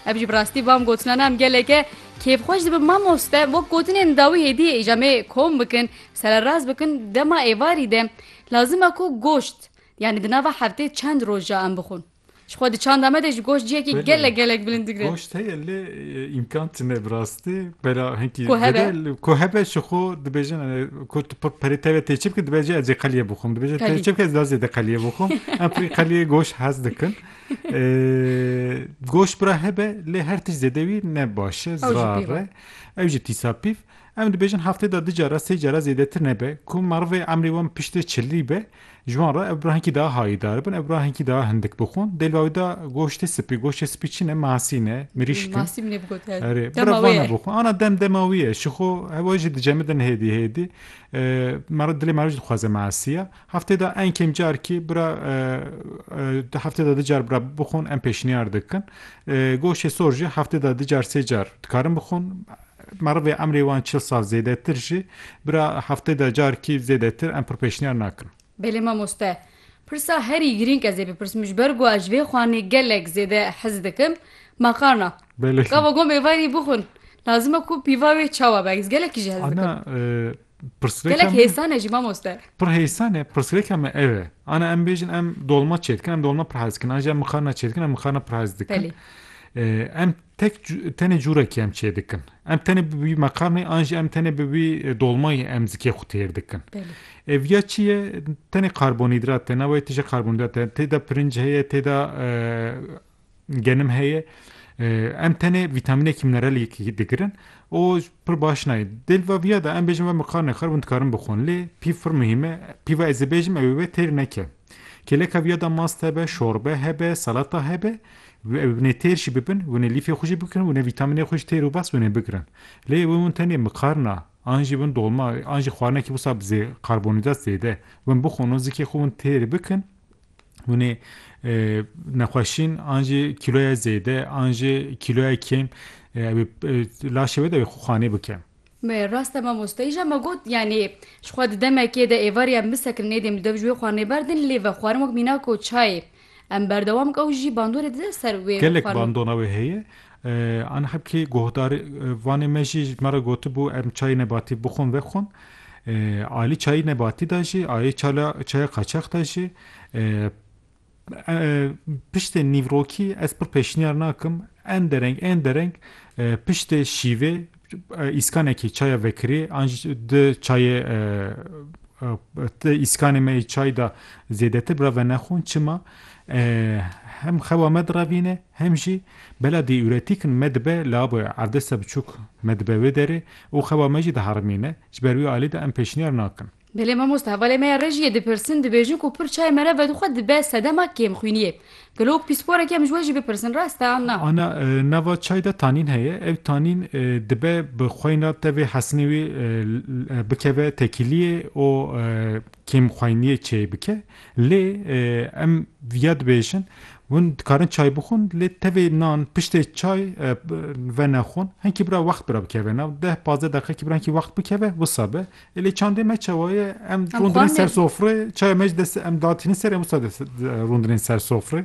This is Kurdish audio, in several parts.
Ev jî bi rastî van gotinan em geleke kêfxweş dibin mamoste wek gotinên dawî hêdiyê îja me kom bikin sererast bikin dema êvarî de lazim e ku goşt yanî di nava heftê çend roj ja em bixwin ji xwe di çanda me de ji goşt ciyekî gelek gelek bilind digre goşt heye lê îmkan tine bi rastî bela hinkî Ku hebe. girel ku hebe ji xwe dibêjin e, ku tu pe- perê te ve tê çi bikin dibêje ez ê qeliyê bixwim dibêje tê Qelî. çi bikin ez daha zêde qeliyê bixwim em pirî qeliyê goşt hez dikin Goş bira hebe lê her tişt zêde wî ne baş e zirare ew jî tîsa pîv em dibêjin heftê de di cara sê cara zêdetir nebe ku merivê emrê wan piştê çilî be ji wan re ev bira hinkî daha hayîdar bin ev bira hinkî daha hindik bixwin dê li wî da goştê spî goştê spî çi ne masî ne mirîşk ana dem dema wî ye şixo hewa jî dicemidin hêdî hêdî mera dilê mera jî dixwaze masiya Heftê de en kêm carkî bira di heftê de di car bira bixwin em pêşniyar dikin. Goşê sor jî heftê de di car sê car dikarin bixwin. Merivê emrê wan çil sal zêdetir jî bira heftê de carkî zêdetir em pir pêşniyar nakin. Belê mamoste. Pirsa herî girîng ez ê bipirsim ji ber ku ez ji vê xanê gelek zêde hez dikim makarna. Belê. Gava gom êvarî bixwin lazim e ku pîva wê çawa be ez gelekî jî hez dikim. Ana Gelek hêsan e jî mamoste. Pir hêsan e, pirsgirêka me ev e. Ana em bêjin em dolma çê dikin, em dolma pir hez dikin. An jî em mixarna çê dikin, em mixarna pir hez dikin. Em tek tenê cûrekî em çê dikin. Em tenê bi wî meqarnê an jî em tenê bi wî dolmayê em zikê xwe têr dikin. Ev ya çi ye? Tenê karbonhîdrat e, navê tije karbonhîdrat e. Tê de pirinc heye, tê de Genim heye em tenê vîtamînekî mineraliyekî digirin û pir baş nayê. Dê li va viya de em bêjin ve min kar nexir hûn dikarin bixwin lê pîv pir muhîm e. Pîva ez ê bêjim ew ê we têr neke. Kêleka viya de mast hebe, şorbe hebe, salata hebe ew ê hûn ê têr jî bibin, hûn ê lîfê xwe jî bikirin, hûn ê vîtamînê xwe ji têr û bast hûn ê bigirin. Lê wê hûn tenê mikarna an jî bin dolma an jî xwarinekî wisa bi zê karbonhîdrat zêde bin bixwin û zikê xwe hûn têr bikin Hûn ê nexweşîn an jî kîloya zêde an jî kîloya kêm ew ê laşê wê de wê xanê bike. Me rast e mamoste îja me got yanî ji xwe di demekê de êvar ya min sekinî nêdîm li dev ji wê xanê berdin lê vexwarin wek mînako çayê em berdewam bike û jî bandorê dide ser wê vexwarin. Gelek bandona wê heye. Anxebkî guhdar vanê me jî ji me re gotibû em çayê nebatî bixwin vexwin. Alî çayê nebatî de jî ayê çala çaya qaçax de jî piştê nîvrokî ez pir pêşniyar nakim en dereng en dereng piştê şîvê îskanekî çaya vekirî an jî di çayê di îskanê me yê çay de zêdetir bi re venexwin. Çima? Hem xewa me direvîne. Hem jî bela dîuretîk in me dibe li ava erdesta biçûk me dibe wê derê û xeba me jî diherimîne, ji ber wî alî de em pêşniyar nakin. Belê mamoste hevalê me ya rejiyê dipirsin, dibêjin ku pir çayê me re vedixwe dibe sedema kêmxwîniyê. Gelo wek pîsporekî em ji we jî bipirsin rast e an na? A na, nava çay de tanîn heye, ev tanîn dibe bi xweyna tevê hesinê wî bikeve tekîliyê û kêmxweyniyê çêy bike, Lê em viya dibêjin, hûn dikarin çay bixwin, lê tevê nan piştê çay venexwin, hinkî bira wext bira bikeve nav, deh pazdeh deqekî bira hinkî wext bikeve, wisa be. Ê lê çandê me çawa ye, em rûndirên ser sofrê, çaya me ji dest em datînin ser, em wisa rûndirên ser sofrê.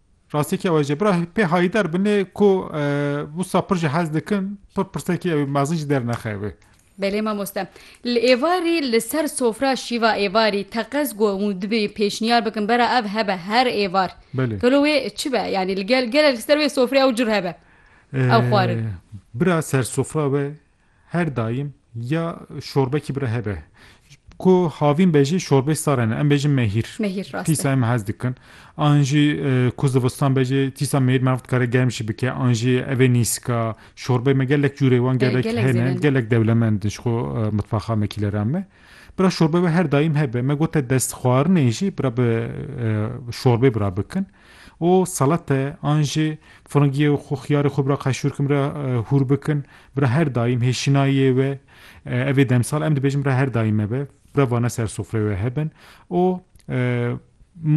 Rastiyekî ew e jî bira pê hayîdar binê ku wisa pir jî hez dikin, pir pirsekî ew mezin jî dernexeve. Belê mamoste. Li êvarî li ser sofra şîva êvarî teqez ku hûn dibê pêşniyar bikin bera ev hebe her êvar. Belê. Gelo wê çi be? Yanî li gel gelek li ser wê sofrê ew cur hebe. Ew xwarin. Bira ser sofra be Her daim ya şorbekî bira hebe. Ku havîn be jî şorbeyê sar hene. Em bêjin mehîr. Mehîr rast e. Tîsa em hez dikin. An jî ku zivistan be jî tîsa mehîr meriv dikare germ jî bike. An jî evê nîska şorbeyê me gelek cûrê wan gelek gelek hene. zêde ne. Gelek dewlemend in ji xwe mitbaxa me kîleran me. Bira şorbe be her daim hebe. Me gote destxwarinê jî bira bi şorbê bira bikin. û salate an jî firingiyê û xwe xiyarê xwe bira qeşûrkim re hûr bikin bira her daîm hêşînayê we evê demsal em dibêjin bira her daîm me be bira vane ser sofreyê we hebin û